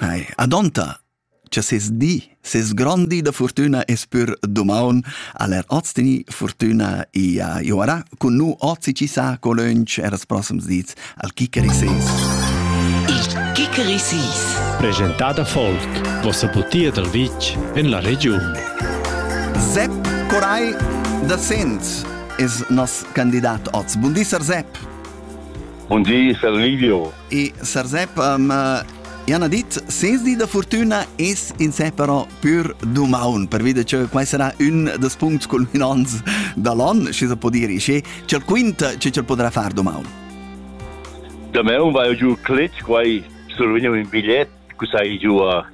Ei, adonta, cha ses di, ses grond di da fortüna es pür dumaun, al er hoz teni fortüna i a Joara, cun nu ozi chi sa co lönch er els prossums dits al Kickeri Sees. Il Kickeri Sees. Presentada folk, vossa butia dal vitg en la regiun. Sepp Coray da Sent es nos candidat oz. Bun di, Sir Sepp. Bun di, Sir Livio. E Sarsep, ma Iana dit, sens di da fortuna es insè però pür dumaun, pervi da che quai sarà ün des puncts culminants da l'on, schi se po dire, schi c'el quinta che c'el potrà far dumaun. Damaun vai giù cletg, quai survegnu un bigliet, cu sai giù a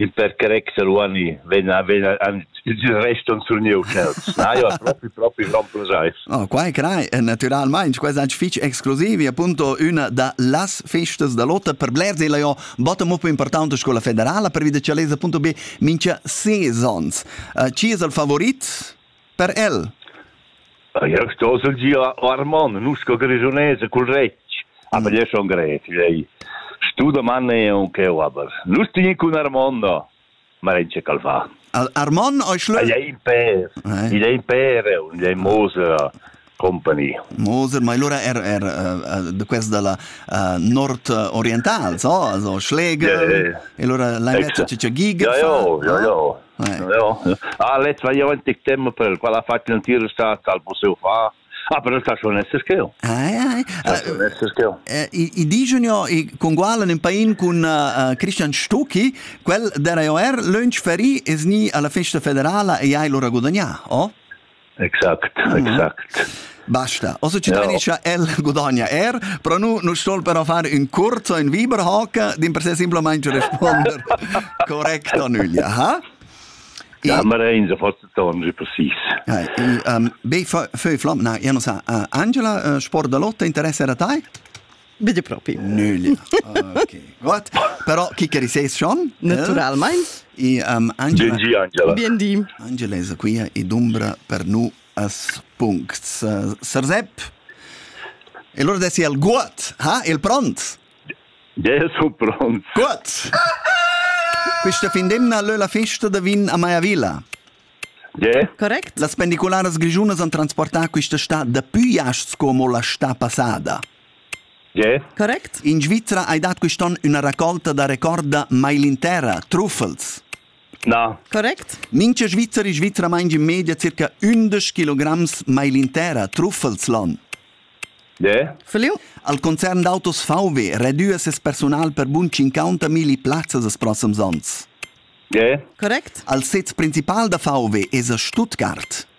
Il per carezza Ruani vegn vegn il rest on surniu tschels. Na, jo, propi propi remplazais. Oh, quai crai natüralmaing, quai es fich exclusiv e appunto üna da las festas da lotta per blers illa jo botta mo pü importanta scoula federala pervi da cha lez appunto be mincha sezons. Uh, chi es il favorit? Per el? Jeu stosel gia Armon, nusca grischunesa cul retg, aber jeu schon gret, lei. Stu doman eu cheu aber. Nus tin cun Armon da. Ma in che cal fa. Armon ei schlö. Ei ein per. Ei ein per, ei mose. company. Mose, ma allora er, er uh, de quest da la uh, nord-oriental, so, also Schläge, yeah, yeah. e allora l'hai messo c'è gig? Ja, ja, ja, ja. ja. Ah, letzt war ja in September, qual ha fatto un tiro al museo fa. Ah, però sta schon essere che io. Ai ai. I digiunio i congualen in pain con Christian Stucki, quel der io er lunch feri es ni alla festa federala e ai lora guadagna, oh? Exact, exact. Basta. Also ci tradischa el gudagna er, però nu nu stol però far ün curzo in Viberhaken, din per se simplamente responder correct a nüglia, ha? Ja, ma rein sa fast tangi precis. Ja, i, um, be feu flam, na, io non sa, uh, Angela, uh, sport da lotta interessa era tai? Bide propi. Nölia. Okay. Gut. Però chi che riseis schon? Naturalmein. E um, Angela. Bien di Angela. Bien di. Angela è qui ed umbra per nu as puncts. Uh, Sarzep. E loro dessi il gut, ha? Il pront? Ja, so pront. Gut. Questa findemna lö la festa da vin a Maiavilla. Yeah. Correct? Las pendiculares grigiunas han transportà questa sta da più iasts come la sta passada. Tge? Correct? In Svizra hai dat quest'onn üna raccolta da recorda mailinterra, truffels. Na. Correct? Mincha Svizzer e Svizra maingi in media circa ündesch kilograms mailinterra, truffels l'on. Tge? Feliu? Al concern d'autos VW redüa ses personal per bun 50 milli plazzas els prossims ons. Tge? Correct? Al sez principal da VW es a Stuttgart.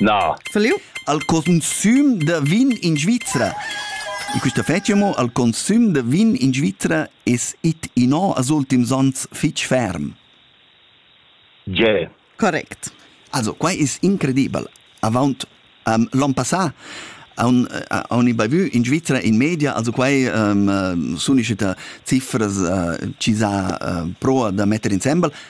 Na. Feliu? Al consum da vin in Svizra. In quista fetscha mo al consum da vin in Svizra es it innò als ultims ans fich ferm. Ge. Correct. Also, quai es incredibel. Avaunt um, l'on passà haun, haun bavü in Svizra in media, also quai um, sun uscita cifras uh, chi s'ha uh, proa da metter insembel,